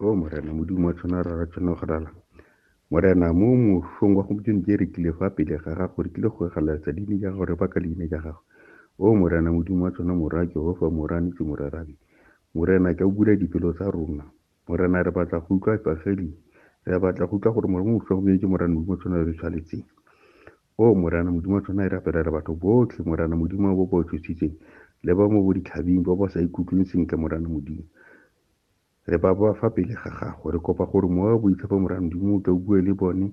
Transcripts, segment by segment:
o morena modimo wa tshwana rara tshwana go rala morena mo mošong wa gompieno ke rekile fa pele ga gago re kile go egaletsa dine ja gago re baka leina ja gago o morena modimo wa tshwana mora jehova morane ke morarabe morena ke o bula dipelo tsa rona morena re batla go utlwa evangeli re batla go utlwa gore morena mošwa gompieno ke morena modimo tshwana re tshwanetseng O Morena Modimo wa tsona e rapelela batho botlhe, Morena Modimo wa bo ba tshositseng, le ba mo bo ditlhabing ba ba sa ikutlweng sentle, Morena Modimo. Re ba ba fa pele ga gago. Re kopa gore mowa wa boitshepo, Morena Modimo, o tle o bue le bone,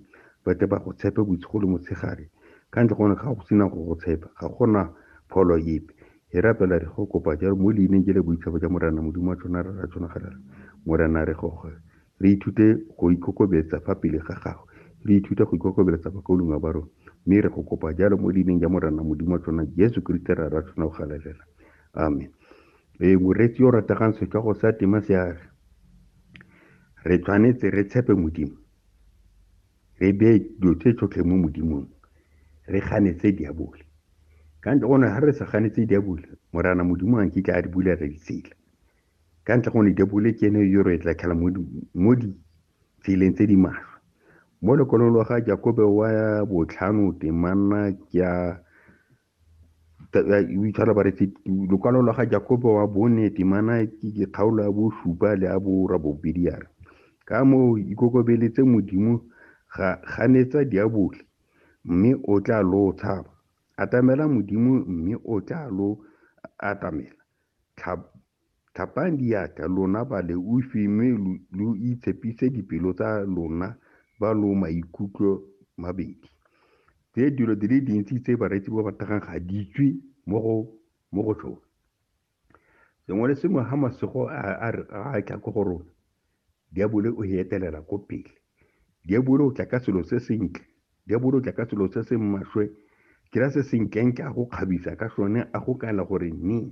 ba tle ba go tshepe bosigo le motshegare. Ka ntle gone ga go sena go go tshepa, ga gona pholo epe. Re rapela re go kopa jalo mo leineng je le boitshepo ja Morena Modimo wa tsona re ra tsona galela. Morena re go Re ithute go ikokobetsa fa pele ga Gagwe. Re ithute go ikokobeletsa makolunga ba rona. Mme re go kopa jalo mo Leineng ja Morena Modimo wa tsona, Jesu Keresete Rra ra tsona o galelela. Amen. Ee, moreetsi yo rategang setswago sa tema se a re, Re tshwanetse re tshepe Modimo. Re beye dilo tse tsotlhe mo Modimong. Re ganetse diabole. Ka ntle gone, ga re sa ganetse diabole, Morana Modimo a nkitla a re bulela ditsela. ka ntle go ne diapole ke ene yo re tla tlhela mo ditseleng tse di maswe mo lekwalong lwa ga jakobe wa botlhano temana ke a o itshwara ba re lokwalo lwa ga jakobe wa bone temana ke kgaolo ya bosupa le ya bora bobedi yare ka moo ikokobeletse modimo ga ganetsa diabole mme o tla lo tshaba atamela modimo mme o tla lo atamela Tlhapang diatla, lona baleofi, mme lo itshepise dipelo tsa lona ba lo maikutlo mabedi. Tse dilo di le dintsi tse bareetsi ba ba tagang ga di tswe mo go mo go tsone. Sengwe le sengwe ga masego a a tla ko go rona, Diabole o heetelela ko pele. Diabole o tla ka selo se sentle. Diabole o tla ka selo se se mmaswe. Kira se senklentle a go kgabisa ka sone, a go kaela gore nnye.